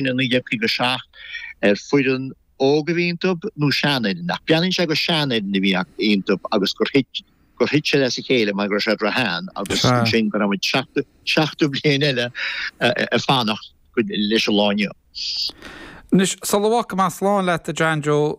ina 1957 ar foireann óg a bhí iontu nó seanfhoireann ach breathnaíonn sé gur seanfhoireann a bhí iontu agus gur thit gur thit sé as a chéile mar go raibh sé ró-shean agus ansin go raibh muid seachtú seachtú bliain eile ag fanacht leis an lá inniu. Anois, sula bhfágfaidh mé slán leat, a John Joe,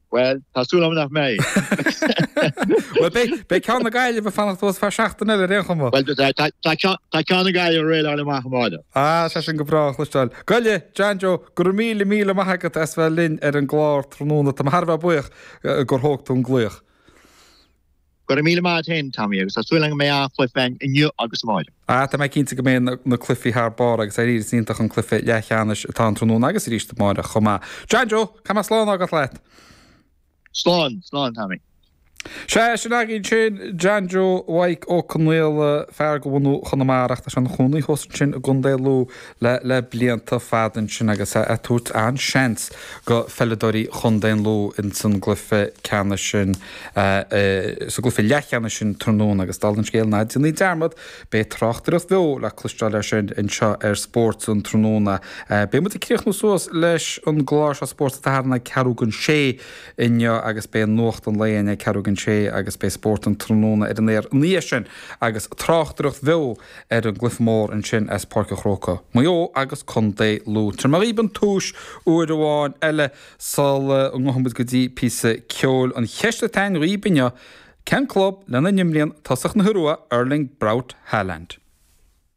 Bhuel, tá súil agam nach mbeidh. Bhuel, beidh ceann na Gaillimhe ag fanacht ar feadh seachtain eile ar aon chuma. Bhuel, tá ceann na Gaillimhe réidh leo le amach an bháide. Á, sé sin go breá a chloisteáil. Gabh i leith, John Joe, go raibh míle, míle maith agat as bheith linn ar an gclár tráthnóna. Táim thar a bheith buíoch gur thóg tú an glaoch. Go raibh míle maith a't fhéin, Tommy, agus tá súil agam go mbeidh an-chluife againn inniu agus amáireach. Ah, tá mé cinnte go mbeidh na cluifí thar barr agus ar ndóigh, is iontach an cluife leathcheannais atá ann tráthnóna agus arís amáireach chomh maith. John Joe, go mba slán agat leat? Slán, slán, Tommy. Sea, sin againn sin, John Joe Mhaidhc Ó Conaola, fear de bhunadh Chonamara ach tá sé ina chónaí fós ansin i gContae Lú. le blianta fada ansin agus a' tabhairt an-seans go pheileadóirí Chontae Lú ins an gcluife ceannais sin, sa gcluife leathcheannais sin tráthnóna agus dála an scéil ná déanaí dearmad, beidh tráchtaireacht bheo le cloisteáil air sin anseo ar Spórt an tráthnóna. Beidh muid ag críochnú suas leis an gclár seo Spórt an tSathairn ag ceathrú chun a sé inniu agus beidh Nuacht an Lae inniu ag ceathrú chun a sé agus beidh Spórt an tráthnóna ar an aer ina dhiaidh sin agus tráchtaireacht bheo ar an gcluife mór ansin as Páirc an Chrócaigh, Maigh Eo agus Co. Lú. Tabharfaidh mé dhaoibh an tomhais, uair amháin eile sula ngabhfaidh muid go dtí píosa ceoil, an cheist atá againn dhaoibh inniu, cén club lena n-imríonn tosaí na hIorua, Erling Braut Haaland?